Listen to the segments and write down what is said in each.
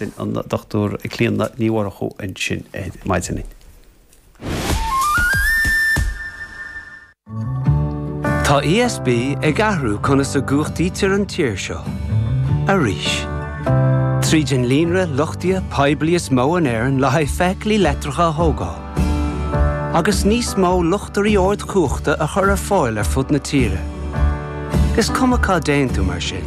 B'in an Dr Clíodhna Ní Mhurchú ansin ar maidin. Tá ESB ag athrú conas a gcumhachtaítear an tír seo arís. Tríd an líonra luchtaithe poiblí is mó in Éirinn le haghaidh feithiclí leictreacha a thógáil, agus níos mó luchtairí ardchumhachta a chur ar fáil ar fud na tíre, is cuma cá dtéann tú mar sin,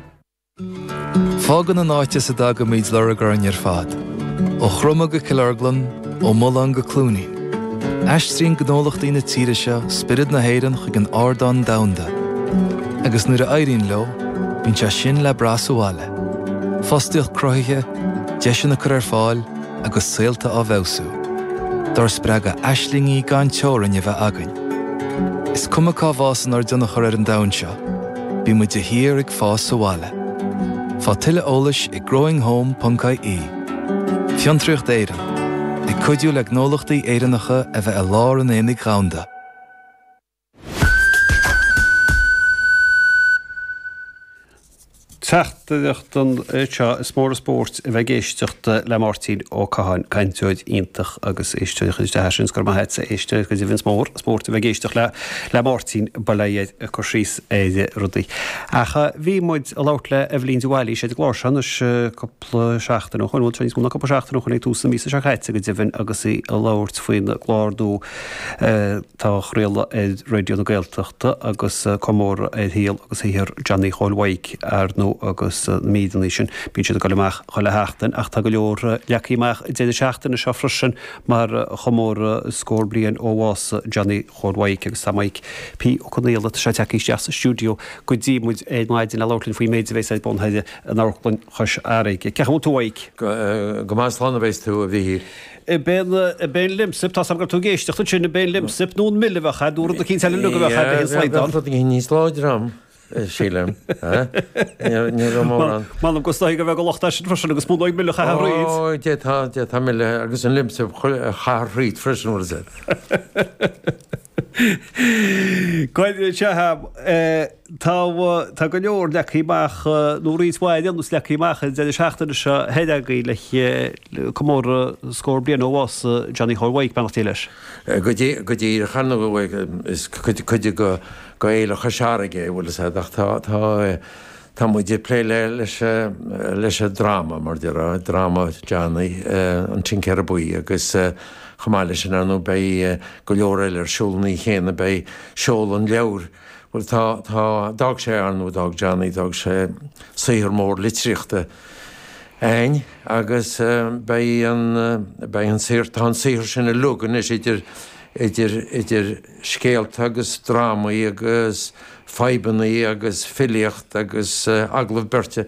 Fágann an áit as a dtagaimid lorg orainn ar fad. Ó Chromadh go Cill Orglan, ó Mhulán go Cluainín. Aistríonn gnólachtaí na tíre seo spiorad na hÉireann chuig an ardán domhanda. Agus nuair a éiríonn leo, bíonn sé sin le brath sa bhaile. Fostaíocht cruthaithe, deiseanna á gcur ar fáil agus saolta á bhfeabhsú. Dár spreagadh aislingí gan teorainn a bheith againn. Is cuma cá bhfásann ár dtionchar ar an domhan seo, Beidh muid de shíor ag fás sa bhaile. Faigh tuilleadh eolais ag growinghome.ie. Fiontraíocht Éireann, ag cuidiú le gnólachtaí Éireannacha a bheith i lár an aonaigh dhomhanda. Teachtaireacht anseo, Is mór an spóirt a bheith ag éisteacht le Máirtín Ó Catháin, cainteoir iontach agus éisteoir a chuir isteach é sin, is go raibh maith agat a éisteoir go deimhin is mór an spóirt a bheith ag éisteacht le le Máirtín, bail air ag cur síos ar rudaí. Ach bhí muid ag labhairt le Eibhlín de Bhailís ar an gclár seo anois cúpla seachtain ó shoin, bhuel níos mó ná cúpla seachtain ó shoin ag tús na míosa seo caite go deimhin agus í ag labhairt faoina clár nua, Atá á chraoladh ar Raidio na Gaeltachta agus comóradh ar shaol agus shaothar Johnny Chóil Mhaidhc ar ndóigh agus na míreanna sin bíonn siad ag goil amach chuile sheachtain ach tá go leor leagtha amach ag deireadh na seachtaine seo freisin mar chomóradh scór bliain ó bhás Johnny Chóil Mhaidhc agus tá Maidhc P. Ó Conaola tagtha isteach sa stiúideo go dtí muid ar maidin le labhairt linn faoin méid a bhéas ar bun in Amharclann Chois Fharraige. Cén chaoi a bhfuil tú, a Mhaidhc? Go maith slán a bhéas tú a Mhichíl. I bpéin Lemsip, tá a fhios agam go raibh tú ag éisteacht ansin, i bpéin Lemsip, nó an mil a bheadh air, nó rud eicínt eile leigheas a bheadh air le haon slaghdán. Rud eicínt níos láidre ann, sílim, ní raibh mór ann. M'anam go sna haoga a bheadh an locht air sin freisin agus b'fhonn dóibh mil a chaith thar throid. Ó, Dé tá, Dé tá mil agus an Lemsip a chaith thar throid freisin, an bhfuil a fhios agat. Go raibh maith agat. Tá go leor leagtha amach, nó roinnt mhaith ar aon nós leagtha amach an deireadh seachtaine seo chugainn le comóradh scór bliain ó bhás Johnny Chóil Mhaidhc, beannacht Dé leis. Go díreach ar ndóigh is cuid d'Fhéile Chois Fharraige é an bhfuil a fhios agat ach tá muid ag plé leis an dráma, mar a déarfá, dráma Johnny, An Tincéara Buí agus chomh maith leis sin ar ndóigh beidh go leor eile ar siúl an oíche chéanna, beidh seoladh an leabhair, Bhuel, tá, tá, d'fhág sé ar nó d'fhág Johnny, d'fhág sé saothar mór litríochta a'ainn agus beidh an, beidh an saothar, tá an saothar sin uilig anois idir, idir, idir scéalta agus drámaí agus amhráin agus filíocht agus agallaimh beirte.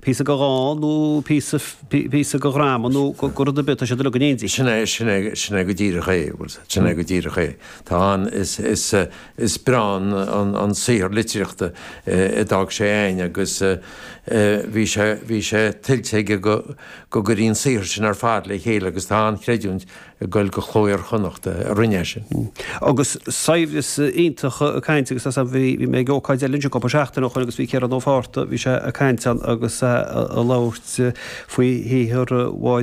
píosa go dhán nó píosa go dhráma nó go rud ar bith, tá siad uilig in éindí. Sin é, sin é, sin é go díreach é, sin é go díreach é. Tá an, is, is, is breá an, an, an saothar litríochta a d'fhág sé a'ainn agus bhí sé, bhí sé tuillte aige go, go gcuirfí an saothar sin ar fad le chéile agus tá an-chreidiúint ag goil go Cló Iar-Chonnachta a rinne é sin. Agus saibhreas iontach cainte agus as bhí mé ag ócáid eile anseo cúpla seachtain ó shoin agus bhí Ciarán Ó Fátharta, bhí sé ag caint ann agus é a labhairt faoi shaothar